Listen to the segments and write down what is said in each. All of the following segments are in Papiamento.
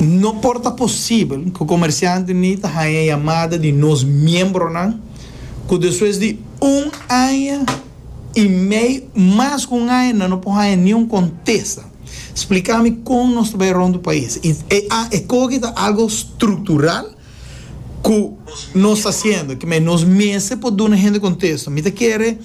No por ta posibel ku komersiantenan ta haña yamada di nos miembronan ku despues di un aña i mei mas ku un aña nan no por haña niun kontesta. Spliká mi kon nos ta bai rònt e pais. E koki ta algu struktural. ku nos ta hasiendo ke men nos mester por duna hende kontesto mi ta kere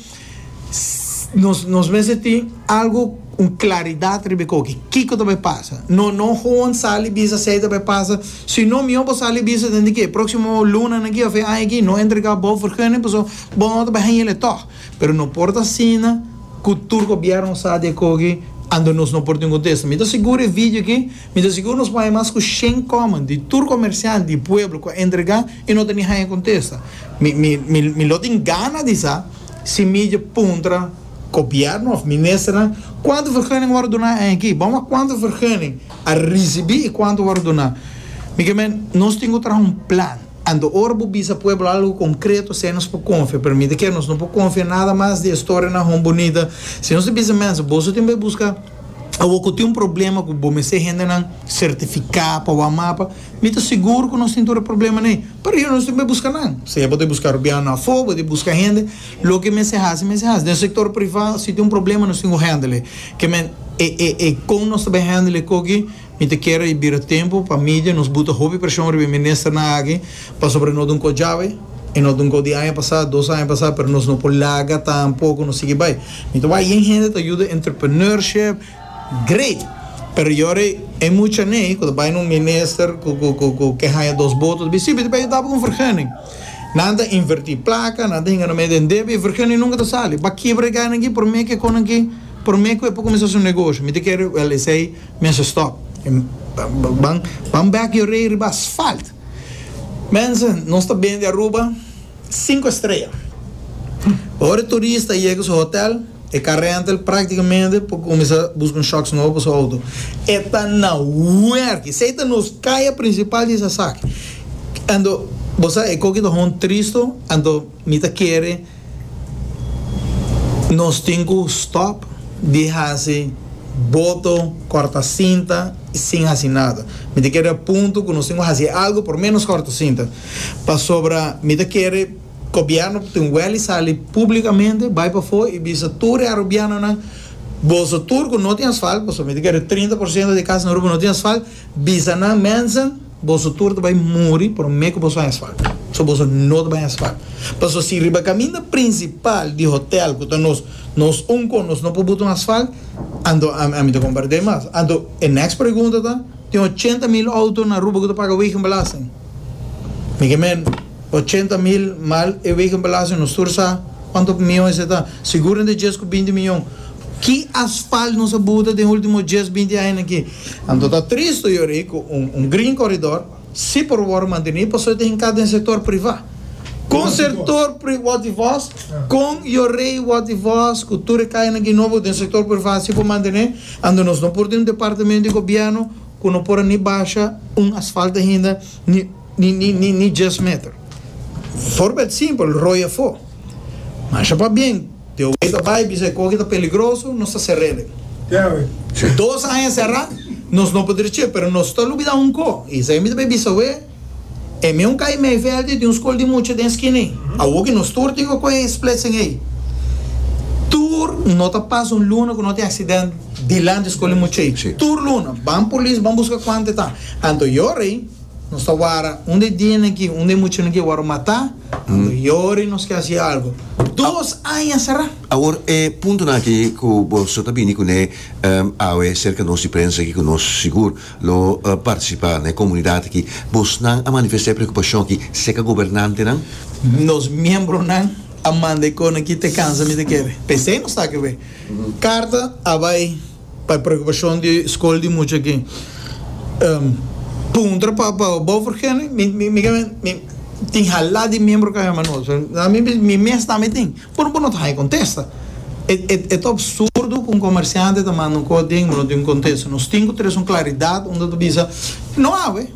nos nos mester tin algu un klaridat riba e koki kiko ta bai pasa no no hoan sali bisa sey ta bai pasa sino mihó bo sali bisa den dikey proksimo lunanan aki of e aña aki no entrega bo vergunning paso bo no ta bai hañele tog pero no por ta asina ku tur gobièrnu a sa di e koki ando nos no por tin un kontesto mi ta sigur e video aki. Mi ta sigur nos por haña mas cu shen comment di tur comerciant di pueblo cu a entrega y no ta ni haña contesta. Mi mi mi mi lo tin gana di sa si mi dje puntra Gobierno of Ministernan cuanto vergunning a worde duna a aki. Bam wak cuanto vergunning a ricibi y cuanto a worde duna. Mi ke men nos tin cu traha un plan anto ora bo bisa pueblo algo concreto esey nos por confia pero mi ta kere nos no por confia nada mas di historianan hon bunita. Si nos ta bisa mensen boso tin bay busca. Awor cu tin un problema cu bo mester hendenan certifica pa wou a mapa, mi ta sigur cu nos tin tur e problemanan ey. Pero yo no tin pa busca nan, sea bo ta busca Rubiano afo, bo ta busca hende, loke mester haci, mester haci. Den sector priva, si tin un problema nos tin cu hendel ey. Kimen e, e, e con nos ta bay hendel ey cogi? Mi ta kere i bira tempu pa media nos buta hopi preshon riba e ministernan aki pasobra no ta un kos djawe i no ta un kos di aña pasá, dos aña pasá, pero nos no por laga tampoco nos sigui bai. Mi ta wak yen hende ta yuda entrepreneurship great pero yori e muchanan ei cu ta bai na un minister cu cu cu cu ke haña dos boto ta bisti si mi ta bay yutá pa un vergunning. Nan ta invertí placa, nan ta hinga na mee den debe i e vergunning nunca ta sali. Bakebra e gana aki prome ke con aki prome cu e por cuminsá su negoshi. Mi ta kere, wèl esei. Mense stop Ban Ban bek yo rei riba asfalt Mense Nos ta bende Aruba Cinco estrella Ora e turista a yega su hotel e ka renta el Practicamente por cuminsa busca un shocks nobo pa su auto E ta na werk Esey ta nos caya principal di esaki Anto Bo sa e coki ta hon tristo Anto. Mi ta kere nos tin cu stop di haci boto, corta cinta y sin haci nada. Mi ta kere a punto cu nos tin cu haci algo por menos corta cinta. Pasobra mi ta kere Gobierno ta tin weli sali publicamente, bay pafo y bisa tur e Arubianonan, Boso tur cu no tin asfalt, pasobra mi ta kere trinta por ciento di casanan Aruba no tin asfalt, bisa nan, mensen, Boso tur ta bai muri prome ku boso haña swak. So boso no ta bai haña swak. Paso si riba kaminda prinsipal di hotel ku ta nos nos un kon nos no por buta un asfalt, anto ami ta kompart'é mas. Anto e next pregunta ta, tin ochenta mil outo na Aruba ku ta paga wegenbelasting? Mi ke men ochenta mil mal e wegenbelasting nos tur sa kuantu mion esei ta. Sigur den djes ku binti mion. Ki asfalt nos a buta den ultimo djes binti añanan ki? Anto ta tristu yorí ku un green koridor sí por wòrdu mantené pasobra ta hinká den sektor privá. Kon sektor privá di vòs, kon yorí wòrdu di vòs ku tur e kayanan ki nobo den sektor privá sí por mantené anto nos no por tin un departamento di gobièrnu ku no por a ni basha un asfalto hinda ni Ni djes meter. Forbeld simpel, roi afó. Masha pabien, di awei ta bai bisa e koki ta peligroso, nos ta ser'elen. Dos aña será, nos no por drech'é, pero nos ta lubidá un kó, i esei mi ta bai bisa awé, e meun kai Meiveld i tin un skol di mucha den skina ei. Awor ki nos tur tin ku kohe e splitsing ei, tur no ta pasa un luna ku no tin aksident dilanti e skol di mucha ei. Tur luna, ban polis, ban buska kuantu e ta. Anto e ora ei. Nos ta wara un di e dianan aki, un di e muchanan aki a wòrdu matá, ando yora i nos ke hasi algu. Dos aña será! Awor, e puntonan aki ku bo so ta bini kuné awe serka nos di prensa aki ku nos sigur lo partisipá na e komunidat aki, bosnan a manifestá e preokupashon aki serka gobernantenan? Nos miembronan a manda e konan aki te kansa mi ta kere. P'esei nos ta aki awe. Karta a bai. Pa e preokupashon di skol di mucha aki. Puntra pa Bovergene, mi ke men mi tin halá di miembro Caja Manó. So na mi bishi mi mes tambe tin. Pero bo no ta haña contesta. E e ta absurdo cu un comerciante ta manda un cos den y bo no tin un contesta. Nos tin cu tres un claridad unda ta bisa no awe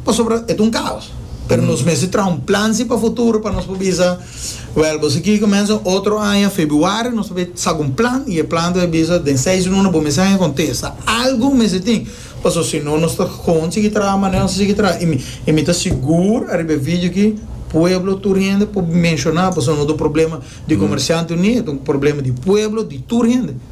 pasobra e ta un caos. Pero nos mester traha un plan si pa futuro pa nos por bisa. Wèl, boso kier kumensa otro aña febuario, nos ta bay sa ku un plan i e plan ta bay bisa den seis luna bo mester haya kontesta. Algu mester tin, pasobra si no nos ta kon sigui traha manera nos a sigui traha. I mi, i mi ta sigur ariba e video aki pueblo tur hende por menshoná, pasobra no ta un problema di Comerciante Unido, ta un problema di pueblo, di tur hende.